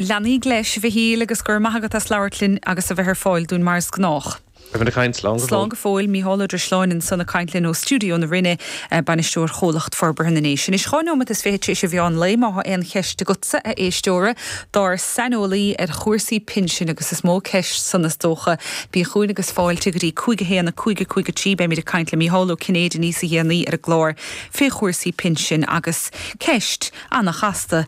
Lean oraibh leis, a Mhichíl, agus go raibh maith agat as labhairt linn agus a bheith ar fáil dúinn mar is gnách. Slán go fóill, Micheál Ó Drisleáin ansan ag caint linn ó stiúideo na Rinne, Bainisteoir Chomhlacht Forbartha na nDéise. Anois dhá neomat is fiche tar éis a mheán lae, má thá aon cheist agatsa, a éisteora, dár saineolaí ar chúrsaí pinsin, agus is mó ceist san is dócha, bí chugainn agus fáilte go dtí cúig a haon, a cúig, a cúig a trí beimid ag caint le Micheál Ó Cinnéide níos déanaí ar an gclár fé chúrsaí pinsin agus ceist. ana-chasta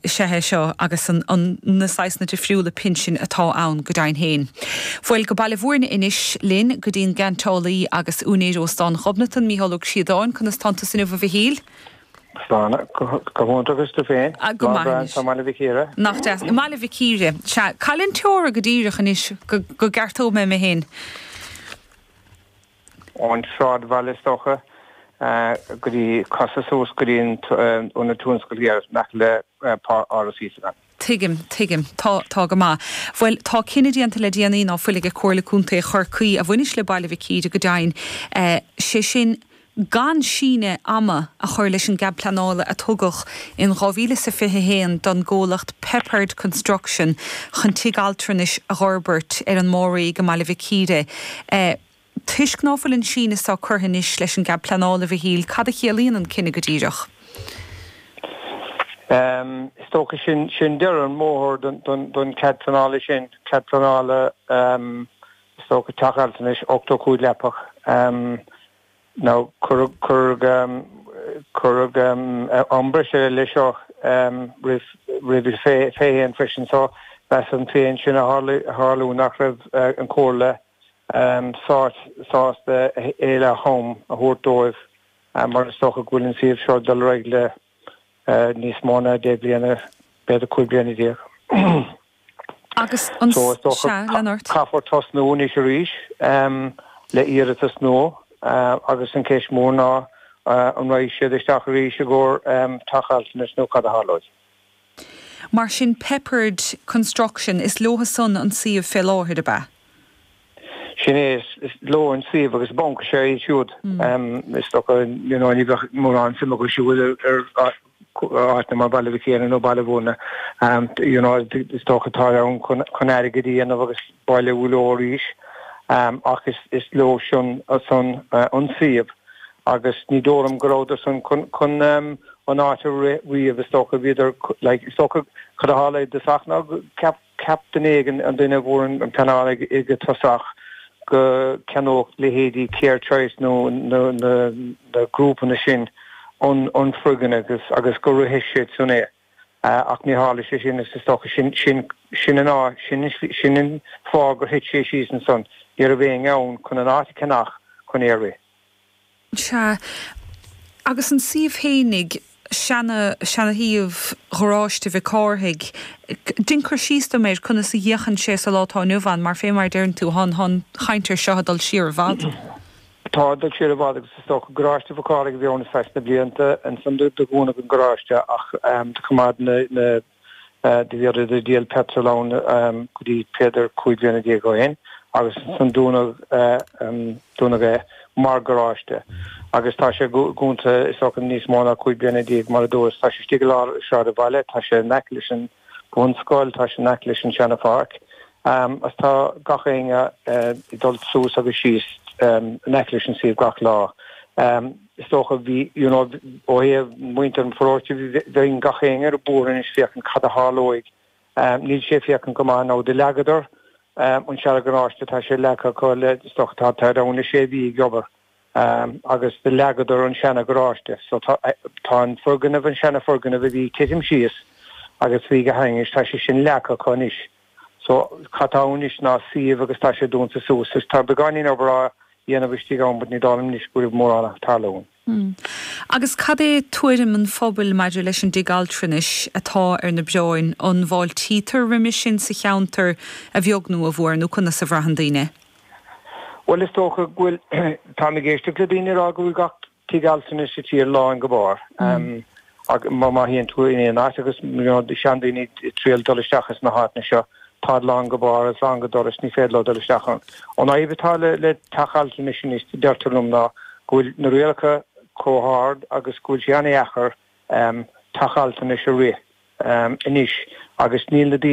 is ea é seo agus na saghsanna difriúla pinsin atá ann, go deimhin féin. Bhuel, go Baile Mhúirne anois linn, go dtín gcainteálaí agus úinéir Óstán Ghobnatan, Micheál Ó Críodáin. Conas tá tusa inniu, a Mhichíl? Táim go hiontach, agus tú féin? Go maith anois. Tá sibh go maith i mBaile Mhic Íre? Nach deas. I mBaile Mhic Íre. Sea, cá luíonn an teora go díreach anois go gceartóidh mé mé féin. ón tsráidbhaile is dócha, go dtí, casadh suas go dtí an ionad tionscail thiar in aice le hÁras Íosagáin. Tuigim, tuigim. Tá, tá go maith. Bhuel, tá cinneadh déanta le déanaí, ná fuil, ag Comhairle Contae Chorcaí, a bhaineas le Baile Mhic Íre go deimhin, sé sin gan síneadh ama a chur leis an gcead pleanála a tugadh in dhá mhíle is fiche a haon don gcomhlacht Peppard Construction chun tigh altranais a dh'fhorbairt ar an Máiréig i mBaile Mhic Íre. Sea, toisc ná fuil an síneadh so curtha anois leis an gCead Pleanála, a Mhichíl, cad a chiallaíonn an cinneadh go díreach? Is dócha sin, sin deireadh an bhóthair don Chead Pleanála sin, Cead Pleanála is dócha, teach altranais 85 leapach. Nó cuireadh iomrá ar a leithéid seo roimhe féin freisin so. Measaim féin sin a tharla, nach raibh an Chomhairle sásta a thuilleadh am a thabhairt dóibh, mar is dócha go bhfuil an suíomh seo ag dul ar aghaidh le. níos mó ná deich bliana, b'fhéidir cúig bliana déag. Caithfear tosnú anois arís le iarratas nua agus an ceist mór ná an raghadh siad isteach arís i gcomhair teach altranais nó cad a tharlóidh. Mar sin, Peppard Construction, is leotha san an suíomh fé láthair, ab ea? Sin é, is leo an suíomh agus baineann sé leo siúd. Is dócha, you know, ní bheadh mórán suim acu siúd in áiteanna mar Bhaile Mhic Íre nó Baile Mhúirne, you know, is dócha tá siad ann chun airgead a dhéanamh agus bailiú leo arís, ach is leo san an suíomh. agus ní dóigh liom go rabhadar san chun an áit a rith riamh, is dócha, bhíodar like, is dócha, cad a tharla i dtosach ná go gceap, cheap duine éigin, an duine a fuair an pleanáil i dtosach, go gceannódh leithéidí CareChoice nó na, na, na grúpanna sin an, an foirgneamh agus, agus go rithfeadh siad san é ach ní tharla sé sin agus is dócha, sin, sin, sin an áit, sin an slí, sin an fáth gur thit sé síos ansan, ní raibh éinne ann chun an áit a cheannach chun é a rith. Sea, agus an suíomh fhéinig, seana-shuíomh Gharáiste Mhic Cárthaigh, dein cur síos dom air, conas a fhéachann sé sa lá atá inniu ann, mar fé mar a deireann tú, tá an chaint ar seo ag dul siar i bhfad. Tá, ag dul siar i bhfad, agus is dócha Garáiste Mhic Cárthaigh a bhí ann ar feadh na blianta. Ansan do dúnadh an garáiste ach do choimeád na. do bhíodar ag díol petrol ann go dtí b'fhéidir cúig bliana déag ó shin agus ansan dúnadh é mar garáiste agus tá sé dúnta is dócha níos mó ná cúig bliana déag mar a dúras. Tá sé istigh i lár sráidbhaile, tá sé in aice leis an bhunscoil, tá sé in aice leis an seanapháirc agus tá gach éinne ag dul suas agus síos in aice leis an suíomh gach lá. Is dócha, bhí, you know, ó thaobh muintir an pharóiste de, tá gach éinne ar bior anois féachaint cad a tharlóidh. Níl sé féachaint go maith now do leagadar an seana garáiste tá sé leagtha acu le, is dócha, tá, táid ann le sé mhí ag obair, agus do leagadar an seana garáiste. So tá, tá an foirgneamh, an seana foirgneamh a bhí titim síos agus bhí go hainnis, tá sé sin leagtha acu anois. So, cad tá ann anois ná suíomh agus tá sé dúnta suas. Is tá beagáinín obair á dhéanamh istigh ann but ní dóigh liom anois go raibh mórán ag tarlú ann. Agus cad é tuairim an phobail maidir leis an dtigh altranais atá ar na bioráin? An bhfáiltítear roimis sin sa cheantar, a bheag nó a mhór, nó conas a bhraitheann daoine? Bhuel, is dócha go bhfuil, táim ag éisteacht le daoine ag rá go bhfuil gach. tigh altranais sa tír lán go barr mar má théann tú in aon áit agus seandaoine ag triall dul isteach sna háiteanna seo táid lán go barr is lán go dorais ní féidir leo dul isteach ann. An fhadhb atá le le teach altranais anois deirtear liom ná go bhfuil na rialacha chomh hard agus go bhfuil sé an-dheacair teach altranais a rith anois agus níl na daoine